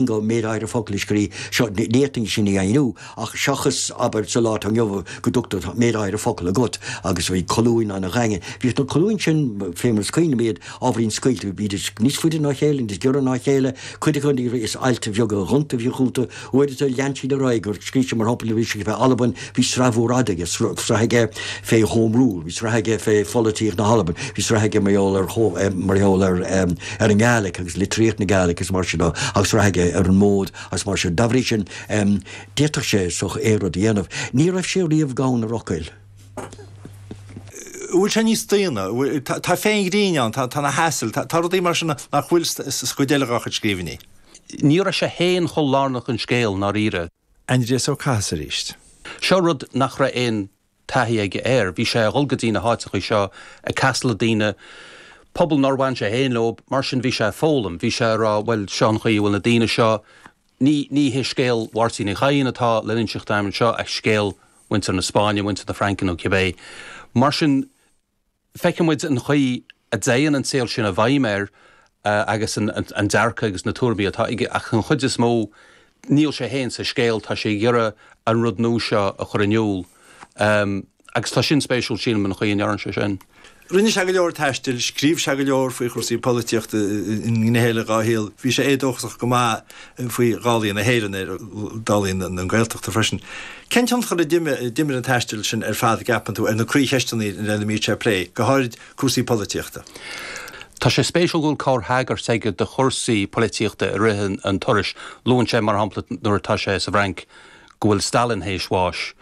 go mbeidh méid áirithe focal le scríobh, ní fhéadfainn sin a dheimhniú ach seachas, abair, sa lá atá inniu go dtugtar tá, méid áirithe focal agat agus bhí colúin an-dhaingean, bhíodh na colúin sin, féna chuid, bíd ábhairín scaoilte, bhídís níos faide ná a chéile, níos giorra ná a chéile, cuid acu ní raibh, is ailt bheaga ghonta a bhíodh iontu, uaireanta lean siad ar aghaidh gur scríobh siad mar shampla nuair a bhí siad ag bheith Albain, Bhí sraith mhór fhada aige, sraith aige fé Home Rule, bhí sraith aige fé pholaitíocht na hAlban, bhí sraith aige mar gheall ar mar gheall ar ar an nGaeilic agus litríocht na Gaeilic is mar sin de agus sraith aige ar an mód agus mar sin. Dá bhrí sin, d'fhéadfadh sé seo a rud a dhéanamh. Ní raibh sé riamh gann ar fhocail. Bhuel tá sé níos daonna, tá féith an ghrinn ann, tá na hasail, tá rudaí mar sin nach bhfuil sa chuid eile dá chuid scríbhinní. Ní raibh sé féin chomh lárnach don scéal, ndáiríre. Aindrias Ó Cathasaigh arís. Seo rud nach raibh aon taithí aige air. Bhí sé a dhul go dtí na háiteachaí seo ag casadh le daoine, pobal nár bhain sé féin leo, mar sin bhí sé ag foghlaim. Bhí sé ag rá, bhuel, seo an chaoi a bhfuil na daoine seo, ní, ní hé scéal Mháirtín Uí Chadhain atá le n-inseacht agam anseo ach scéal mhuintir na Spáinne, mhuintir na Fraince nó cibé. Mar sin. feiceann muid an chaoi a dtéann an saol sin i bhfeidhm air agus an dearcadh agus na tuairimí atá aige ach den chuid is mó níl sé féin sa scéal, tá sé ag iarraidh an rud nua seo a chur in iúl agus tá sin spéisiúil, sílim, an chaoi a ndéanann sé sin. Rinne sé go leor taistil, scríobh sé go leor faoi chúrsaí polaitíochta i ngnéithe eile dhá shaol, bhí sé éadóchasach go maith. faoi dhálaí na hÉireann agus dálaí na Gaeltachta freisin. Cén tionchar a d'imir an taisteal sin ar fad, a gceapann tú, ar na croí-cheisteanna lena mbíonn sé ag plé, go háirid cúrsaí polaitíochta? Tá sé spéisiúil go bhfuil corr-thagairt aige do chúrsaí polaitíochta i rith an turais. Luann sé, mar shampla, nuair atá sé sa bhFrainc, go bhfuil Stalin théis bháis.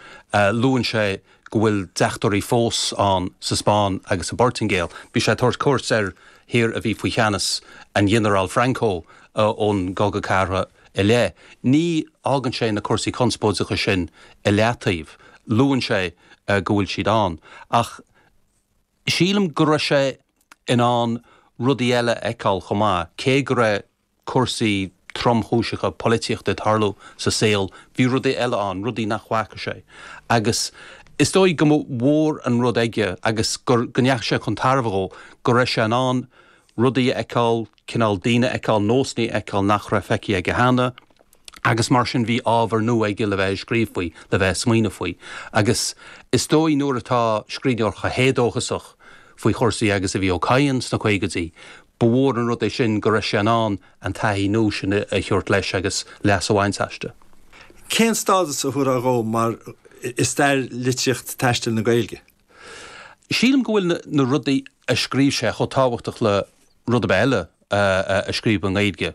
Luann sé. go bhfuil deachtóirí fós ann sa Spáinn agus sa bPortaingéil. Bhí sé ag tabhairt cuairt ar thír a bhí faoi cheannas an Ghinearáil Franco ón gCogadh Cathartha i leith. Ní fhágann sé na cúrsaí conspóideacha sin i leataobh. Luann sé go bhfuil siad ann. Ach sílim go raibh sé in ann rudaí eile a fheiceáil chomh maith, cé go raibh cúrsaí tromchúiseacha polaitíochta ag tarlú sa saol, bhí rudaí eile ann, rudaí nach bhfaca sé. Agus is dóigh go mba mhór an rud aige agus go ndeachaigh sé chun tairbhe dhó, go raibh sé in ann rudaí a fheiceáil, cineál daoine a fheiceáil, nósanna a fheiceáil nach raibh feicthe aige cheana. agus mar sin bhí ábhar nua aige le bheith ag scríobh faoi, le bheith ag smaoineamh faoi. Agus is dóigh nuair atá scríbhneoir chomh héadóchasach faoi chúrsaí agus a bhí Ó Cadhain sna caogaidí, ba mhór an rud é sin go raibh sé in ann an taithí nua sin a thabhairt leis agus leas a bhaint aisti. Cén stádas a thabharfá dhó mar, i stair litríocht taistil na Gaeilge? Sílim go bhfuil na rudaí a scríobh sé chomh tábhachtach le rud ar bith eile a scríobhadh i nGaeilge.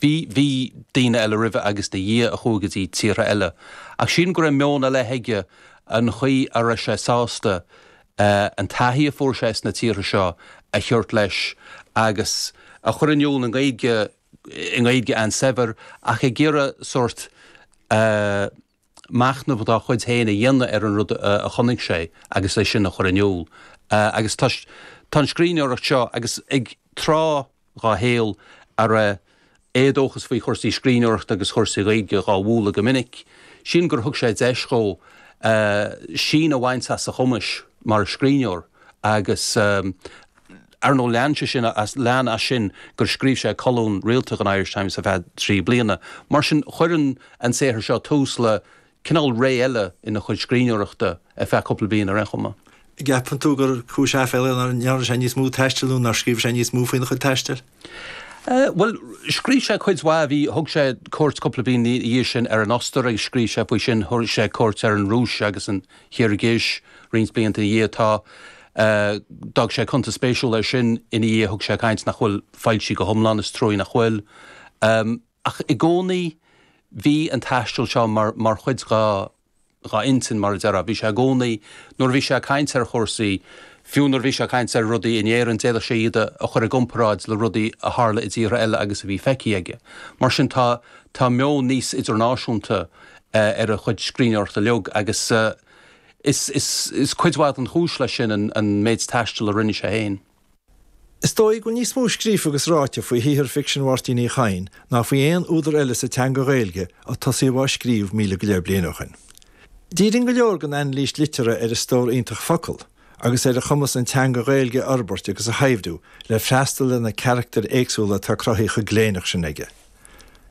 Bhí, bhí daoine eile roimhe agus ina dhiaidh a chuaigh go dtí tíortha eile ach sílim go raibh meon ar leith aige an chaoi a raibh sé sásta an taithí a fuair sé sna tíortha seo a thabhairt leis agus a chur in iúl i nGaeilge, i nGaeilge an-saibhir ach ag iarraidh sórt. machnamh dá chuid féin a dhéanamh ar an rud a chonaic sé agus é sin a chur in iúl. Agus tá an scríbhneoireacht seo, agus ag tráth dá shaol a raibh éadóchas faoi chúrsaí scríbhneoireachta agus chúrsaí Gaeilge dhá bhualadh go minic, sílim gur thug sé deis dhó síneadh a bhaint as a chumas mar scríbhneoir agus. Ar ndóigh, lean sé sin as, lean as sin gur scríobh sé colún rialta don Irish Times ar feadh trí bliana. Mar sin, cuireann an saothar seo tús le cineál ré eile ina chuid scríbhneoireachta, ar feadh cúpla bliain ar aon chuma. An gceapann tú gur cúis aiféala é nár ndearna sé níos mó taistil nó nár scríobh sé níos mó faoina chuid taistil? Bhuel, scríobh sé cuid mhaith, bhí, thug sé cuairt cúpla bliain ina dhiaidh sin ar an Ostair agus scríobh sé faoi sin, thug sé cuairt ar an Rúis agus an. Chirgis. Roinnt blianta ina dhiaidh atá, d'fhág sé cuntas spéisiúil air sin ina dhiaidh thug sé caint nach bhfuil foilsithe go hiomlán, is trua nach bhfuil. Ach i gcónaí bhí an taisteal seo mar chuid dhá intinn, mar a déarfá. Bhí sé i gcónaí, nuair a bhí sé ag caint ar chúrsaí, fiú nuair a bhí sé ag caint ar rudaí in Éirinn, d'fhéadfadh sé iad a chur i gcomparáid le rudaí a tharla i dtíortha eile agus a bhí feicthe aige. Mar sin tá meon níos idirnáisiúnta ar a chuid scríbhneoireachta uilig agus is cuid mhaith den chúis leis sin an méid taistil a rinne sé féin. Is dóigh go bhfuil níos mó scríofa agus ráite faoi shaothar ficsin Mháirtín Uí Chadhain ná faoi aon údar eile sa teanga Ghaeilge ó tosaíodh dhá scríobh míle go leith bliain ó shin. Díríonn go leor den anailís liteartha ar a stór iontach focal agus ar a chumas an teanga Ghaeilge a fhorbairt agus a shaibhriú le freastal ar na carachtair éagsúla atá cruthaithe chomh gléineach sin aige.